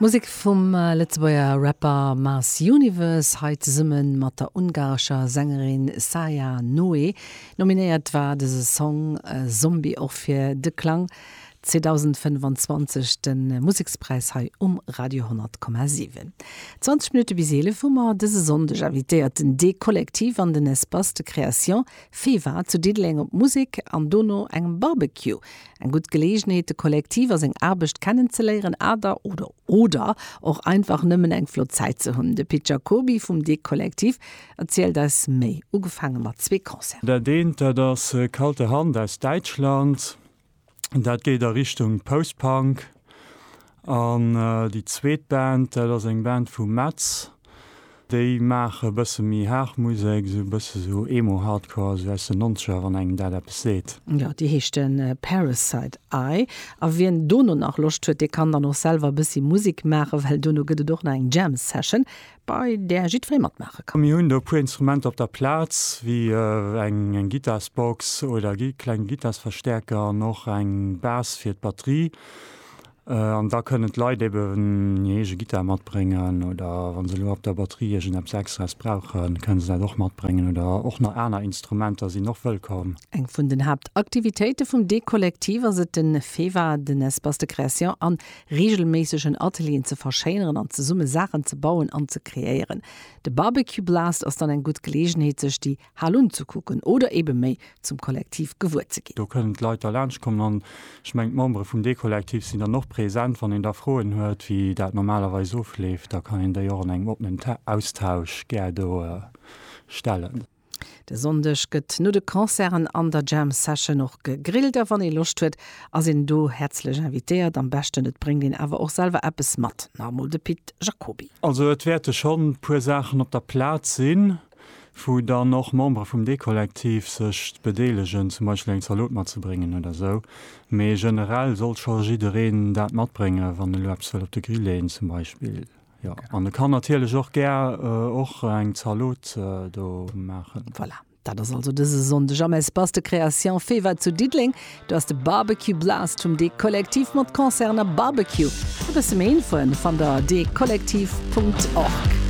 Musek vum Lëtzebuerger Rapper Mars Universe, hei zesumme mat der ungarescher Sängerin Saia Noé. Nominéiert war dëse Song Zombie och fir De Klang 2025, de Musekspräis hei um Radio 10,7. 20 Minutte bis 11 hu mer dëse Sonndeg invitéiert den D-Kollektiv an den Espace de Création Fewa zu Diddeleng op Musek an dono engem Barbecue. Eng gutt Geleegenheet de Kollektiv a seng Aarbecht kennen ze léieren ader oder oder och einfach nëmmen eng flott Zäit ze hunn. De Pit Jacoby vum De Kollektiv erzielt eis méi. Ugefaange mat zwee Concerten. Dat eent dat ass Kalte Hand aus Däitschland. dat geet a Richtung Post-Punk. An déi zweet Band, dat ass eng Band vu Metz, déi maache e bësse méi haart Musek, esou e bësse sou Emo-Hardcore, esou aus den Nonzeger, wann engem dat eppes seet. Jo, déi heescht Parasite Eye. A wien dono nach Loscht huet, dee kann dann och selwer e bëssi Musek maachen, well dono gëtt et och nach eng Jam-Session. bei där jiddweree matmaache kann. Mir hunn do e puer Instrumenter op der Plaz, wéi eng Gittarsbox oder kleng Gittarsverstäerker an och eng Bas fir d'Batterie. An da kënnen d'Leit eben hir eege Gittar matbréngen oder wa se elo op der Batterie iergendeppes Extraes brauchen, kënne se dat och matbréngen oder och nach aner Instrumenter sinn och wëllkomm. Eng vun den Haaptaktivitéite vum Deekollektiv ass et, den Fewa, den Espace de création an reegelméisseg en Atelieren ze verschéineren an zesumme Saachen ze bauen an ze kreéieren. De Barbecue Blast ass dann eng gutt Geleegenheet sech déi Hal unzekucken oder eebe méi zum Kollektiv gewuer ze ginn. Do kënnen d'Leit da laanscht kommen an ech mengen d'Membere vum Dekollektiv sinn dann och present. Wann een da Froen huet wéi dat normalerweis ofleeft, da kann een déi och an engem oppenen Austausch gär do stellen. De Sonndeg gëtt no de Concerten an der Jam Session och gegrillt a wann ee Loscht huet, ass een do häerzlech invitéiert. Am beschten et bréngt een awer och selwer eppes mat, nach emol de Pit Jacoby. Also et wäerte schonn e puer Saachen op der Plaz sinn, wou dann och Membere vum Dekollektiv sech bedeelegen, zum Beispill eng Zalot matzebréngen oder esou, mee generell soll scho jiddereen dat matbréngen, wann e lo eppes wëll op de Grill leeën zum Beispill. Jo, an e kann natierlech och gär och eng Zalot do maachen. Voilà, dat ass also dëse Sonndeg am Espace de Création Fewa zu Diddeleng. Do ass de Barbecue Blast vum De Kollektiv mat Concerten a Barbecue. E bësse méi Infoen fannt der a dekollektiv.org.